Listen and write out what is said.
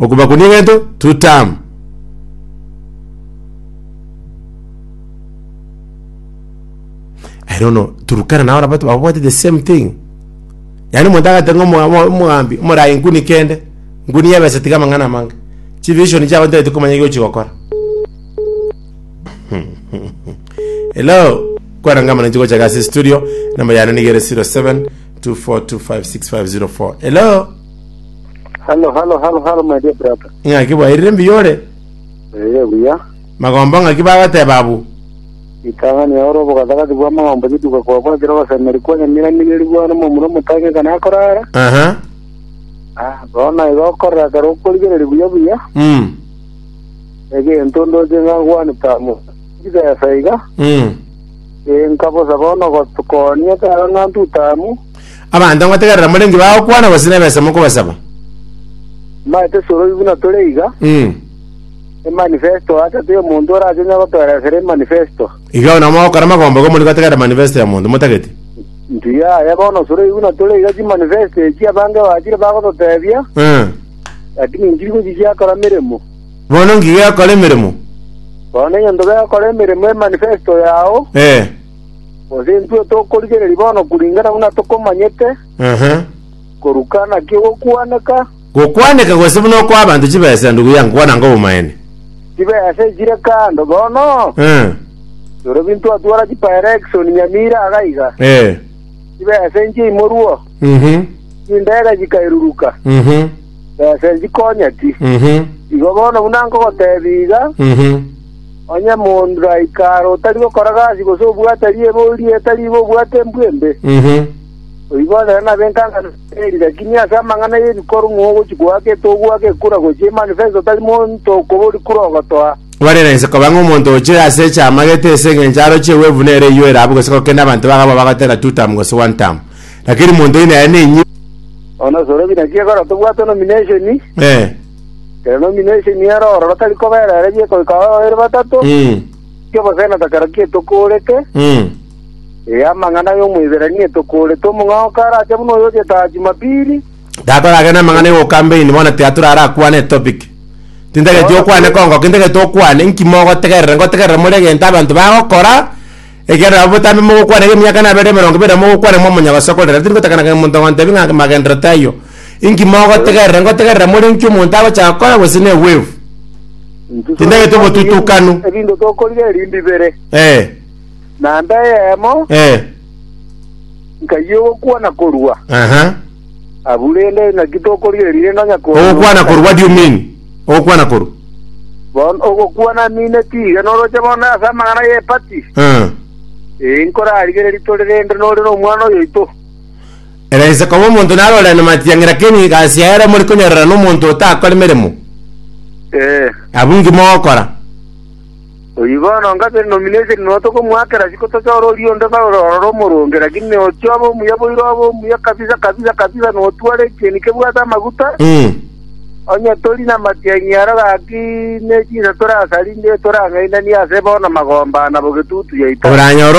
Okobakunia egento to term. I don't know, Turkana nao nabo babwate the same thing. Yaani omonto agate ng'a omo- omo- omogambi omorayi nguni kende, nguni yebesa tiga amang'ana amange. Chivision chiabo ntareti komanya eki ochigokora. Hello, kwarangama ninche gocha gase studio, number yane niga ere 07 24256504. Hello. Hello, hello, hello, hello, my dear brother. Ng'aki bwairire mbuya ore? Ere buya. Magomba ng'aki bagoteba abwo? Ritang'ani yao ore obogatagati bwa magomba rituko kwabwo ekero ogosemeri kwane miramineriri bwane omomura omotange ekana akorara. Aha. Ah, bono naigo okorora ekero okorigereria buya buya. Mm. Egento ndoche ng'a ngwane tamu. Chibesa iga. Mm. Ee, nkabosa bono gotukonia ekero ng'a ntutamu. Abanto ngotegerera more inki bagokwana gose nebesa mokobasaba? Mbae tesorobi buna tore iga, Mm. emanifesto acha tiri omonto orache onye gotoeresera emanifesto. Iga bono mogokora magomba igo morige gotegerera manifesto ya monto motagete. Ntiyaya bono sorobi buna tore iga chimanifesto echi abange bachire bagototebia, Mm. lakini ntiri gochichia kora meremo. Bono nki gekora emeremo? Bono nonye ntobe gokora emeremo emanifesto yao, Eh. Gose intwe tokorigereria bono kuringana buna tokomanyete, Aha. koruka naki ogokwaneka, Gokwaneka gose buna okoa abanto chibesa ndugu yangu kwana nka obomaene. chibesa echire kando bono, Eh. rirobi ntwatwara chipaerekisoni nyamira aga iga, Eh. chibesa inchia imorwo, Mhm. chindege chikairuruka, Mhm. besa nchikonyeti. Mhm. Igo bono buna nkogoteebia iga, Mhm. Onye monto aika are otari gokora gasi gose obwate riire ebori etari bo obwate embwe embe, oyio boonere nabe enkang'ana eri, lakini ase amang'ana y'ebikorwa ng'o ogochi goaka etogoaka ekura gochia emani fensa otari monto okobori kura ogotoa? Gwarire inse koba ng'a omonto oche ase echiama gete ase engencho aroche ewevu nere eyio erabu gose gokende abanto baga abwo bagotera two term gose one term. Lakini monto oyio nere nenyinga. Onye Nyasae orobi naki egora tobwate nomination? Eh. Ere nomino ase emiara ororo tari kobera ere bieka goika ao babere batato, Mm. ki obosena takera ki etokorete, Mm. ee amang'ana ay'Omoiberania etokorete, omong'ao karache buna oyo ogetaha Jumapili, Tatoragenda amang'ana igo campaign bono tiatura ara akwane etopic. Tintageti okwane kongo, kintageti okwane inki mogotegerera, ngotegerera more egento abanto bagokora, Ekiagera nabo botambe mogokwana iga emiaka naberire emerongo ebere na mogokwana ng'a omonyagosokorera, tingotakana ng'a omonto ogontebia ng'a amagenderero tayio. Inki mogotegerera? Ngotegerera more inki omonto agocha gokora gose n'egwevu? Intwe Tindagete tore gocha obotutukanu. ebinto- ebinto tokorigereria mbibere, Eh, naende eyemo eh, nkayia ogokwana korwa. aha. Aburende naki tokorigia erire na nyakoro Ogokwana korwa, what do you mean? Ogokwana korwa. Bono ogokwana amine tiga noroche bono ase amang'ana ye party. Eh. Ee nkorarigereria tore rende nore nomwana oyoito. Era inse koba omonto narorera na matiang'i lakini gasi yaero mori konyorera nomonto otakore meremo. Ee. Abungi mogokora. Oyio bono ngase nomination nonya tokomoakera riko tochore oria onde bare ororo omoronge, lakini ochia obe omuya boigo abe omuya kabisa kabisa kabisa notware ekieni kebwate amaguta, onye tori namatianyi aro gaki ne chinsa torasari nde torang'ainanie ase bono magomba ana bogetutu yaito. Oranyore